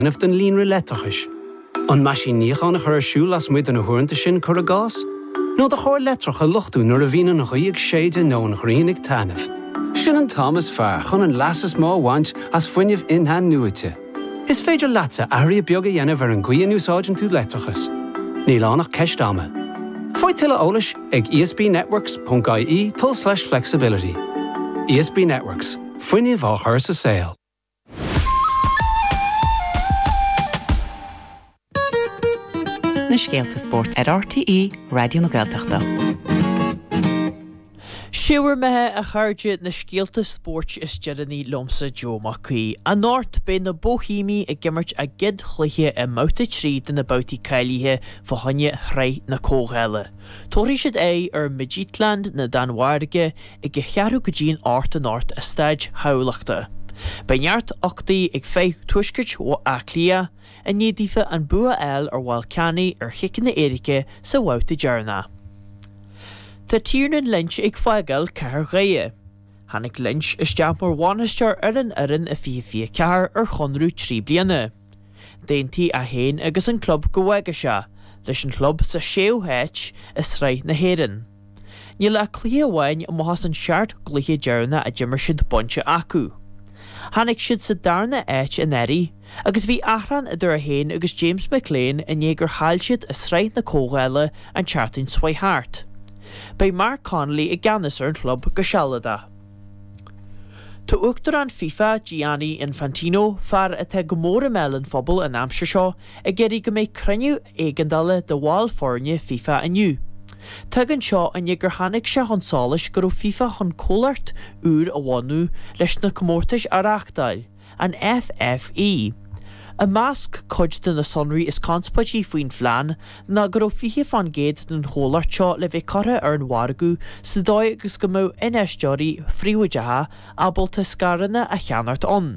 dhéanamh den líonra leictreachais, an meaisín níocháin a chur ar siúl lasmuigh de na huaireanta sin, cuir i gcás, nó do charr leictreach a luchtú nuair a bhíonn an ghaoth ag séideadh nó an ghrian ag taitneamh. Sin an t-am is fearr chun an leas is mó a bhaint as fuinneamh in-athnuaite. Is féidir leatsa athruithe beaga a dhéanamh ar an gcaoi a n-úsáideann tú leictreachas. Níl ann ach ceist ama. Faigh tuilleadh eolais ag esbnetworks.ie tulslais flexibility. ESB Networks, fuinneamh á chur sa saol. na scéalta spóirt ar RTÉ Raidió na Gaeltachta. Sé bhur mbeatha, a chairde, na scéalta spóirt is deireanaí liomsa, Joe Mac Aoidh. Anocht, beidh na Bohemians ag imirt a gcéad chluiche i mBabhta 3 de na babhtaí cáilithe fá choinne Shraith na Comhdhála. Tabharfaidh siad aghaidh ar Midtjylland na Danmhairge ag a cheathrú go dtí an hocht anocht i Staid Thamhlachta. Beidh neart uchtaigh ag foireann Tuaiscirt Bhaile Átha Cliath i ndiaidh daofa an bua a fháil ar Bhallkani ar chiceanna éirice sa bhabhta deireanach. Tá Tiernan Lynch ag fágáil Cathair Dhoire. Tháinig Lynch isteach mar bhainisteoir ar an fhoireann i 2024 ar chonradh trí bliana. D'aontaigh é féin agus an club go bhfágfadh sé leis an chlub sa séú háit i sraith na hÉireann. Níl ach cluiche amháin amuigh as an seacht gcluiche deireanach a d'imir siad bainte acu. Tháinig siad sa darna áit anuraidh agus bhí achrann idir é féin agus James McClean i ndiaidh gur chaill siad i sraith na Comhdhála an tseachtain seo a chuaigh thart. Beidh Mark Connolly i gceannas ar an chlub go sealadach. Tá Uachtarán FIFA, Gianni Infantino, fear atá go mór i mbéal an phobail an aimsir seo, ag iarraidh go mbeidh cruinniú éigeandála de bhaill foirne FIFA inniu. Tagann seo i ndiaidh gur tháinig sé chun solais go raibh FIFA chun comhlacht úr a bhunú leis na comórtais a reáchtáil, An FFE. I measc cuid de na sonraí is conspóidí faoin phlean ná go raibh 20 fán gcéad den chomhlacht seo le bheith curtha ar an mhargadh sa dóigh agus go mbeadh infheisteoirí príobháideacha ábalta scaireanna a cheannacht ann.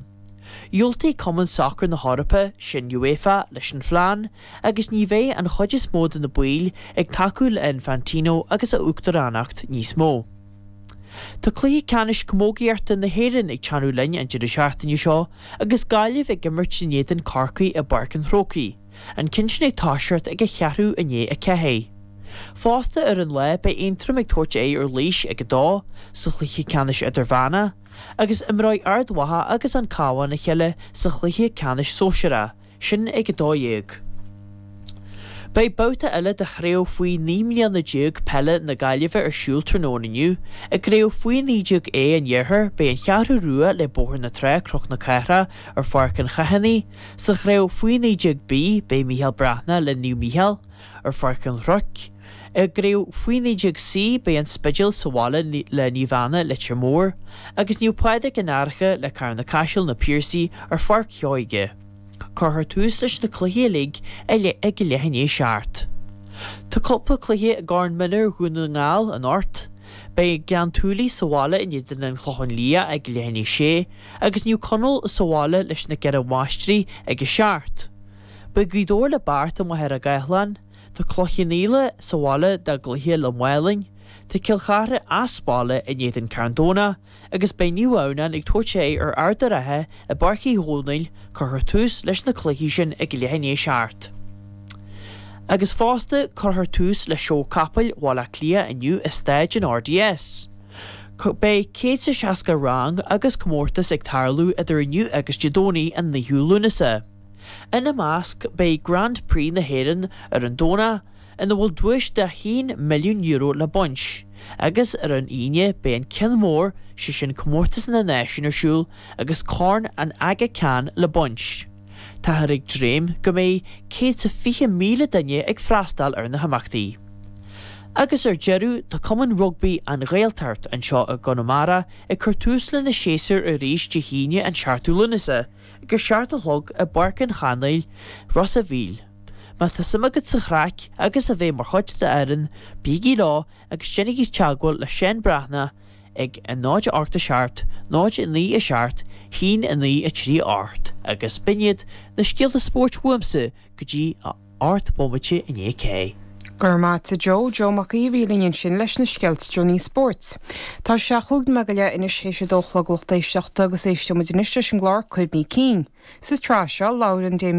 Dhiúltaigh Cumann Sacair na hEorpa sin, UEFA, leis an phlean agus ní bheidh an chuid is mó de na baill ag tacú le Infantino agus a uachtaránacht níos mó. Tá cluiche ceannais camógaíochta na hÉireann ag teannadh linn an deireadh seachtaine seo agus Gaillimh ag imirt in éadan Corcaí i bPáirc an Chrócaigh, an ceann sin ag toiseacht ag a cheathrú i ndiaidh a ceathair. Fosta ar an lá beidh Aontroim ag tabhairt aghaidh ar Laois ag a dó sa chluiche ceannais idirmheánach agus imreoidh Ard Mhacha agus An Cabhán a chéile sa chluiche ceannais sóisear a sin ag a 12. Beidh babhta eile de Chraobh Faoi 19 mbliana Peile na Gaillimhe ar siúl tráthnóna inniu. I gCraobh Faoi 19 A an Iarthair, beidh an Cheathrú Rua le Bóthar na Trá, Cnoc na Cathrach, ar Pháirc an Chathánaigh. Sa Chraobh Faoi 19 B, beidh Mícheál Breathnach le Naomh Mícheál, ar Pháirc an Chnoic. I gCraobh Faoi 19 C, beidh An Spidéal sa bhaile le Naomh Anna, Leitir Móir, agus Naomh Pádraig an Fhairche le Carna Caiseal, Na Piarsaigh, ar Pháirc Sheoige. Cuirfear tús leis na cluichí uilig ag leath i ndiaidh a seacht. Tá cúpla cluiche i gCorn Mhionúir Dhún na nGall anocht. Beidh Gleann tSúilí sa bhaile in éadan an Chlocháin Liath ag leath i ndiaidh a sé, agus Naomh Conaill sa bhaile leis na Ceithre Máistrí ag a seacht. Beidh Gaoth Dobhair le Beart i Machaire Gathlán, tá Cloich Cheann Fhaola sa bhaile dá gcluiche le Málainn, tá Cill Charthaigh as baile in éadan Carn Domhnach, agus beidh Naomh Adhamhnáin ag tabhairt aghaidh ar Ard a' Rátha i bPáirc Uí Dhónaill, cuirfear tús leis na cluichí sin ag leath i ndiaidh a seacht. Agus fosta cuirfear tús le Seó Capaill Bhaile Átha Cliath inniu i Staid an RDS. Beidh céad 's a seasca rang agus comórtas ag tarlú idir inniu agus Dé Domhnaigh an 9ú Lúnasa. Ina measc beidh Grand Prix na hÉireann ar an Domhnach, ina bhfuil duais de €1 milliún le baint, agus ar an Aoine beidh an ceann mór, sé sin Comórtas na Náisiún ar siúl agus Corn an Aga Khan le baint. Táthar ag dréim go mbeidh céad 's a fiche míle duine ag freastáil ar na himeachtaí. Agus ar deireadh tá Cumann Rugbaí An Ghaeltacht anseo i gConamara ag cur tús lena séasúr arís Dé hAoine an 7ú Lúnasa, Ag a seacht a chlog i bPáirc an Chanáil, Ros a' Mhíl. Má tá suim agat sa chraic agus a bheith mar chuid d'fhoireann, bígí leo agus déanaigí teagmháil le Seán Breathnach ag 0 8 7, 0 9 7, 1 9 3 8 agus b'in iad na scéalta spóirt uaimse go dtí a ocht bomaite i ndiaidh a sé. Go raibh maith agat Joe, Joe Mac Aoidh a bhí linn ansin leis na scéalta deireanaí spóirt. Tá sé a chúig nóiméad go leith anois théis a dó a chlog lucht éisteachta agus éisteoimid anois leis an gclár Cuimhní Cinn. Sa tsraith seo, labhaireann Damien.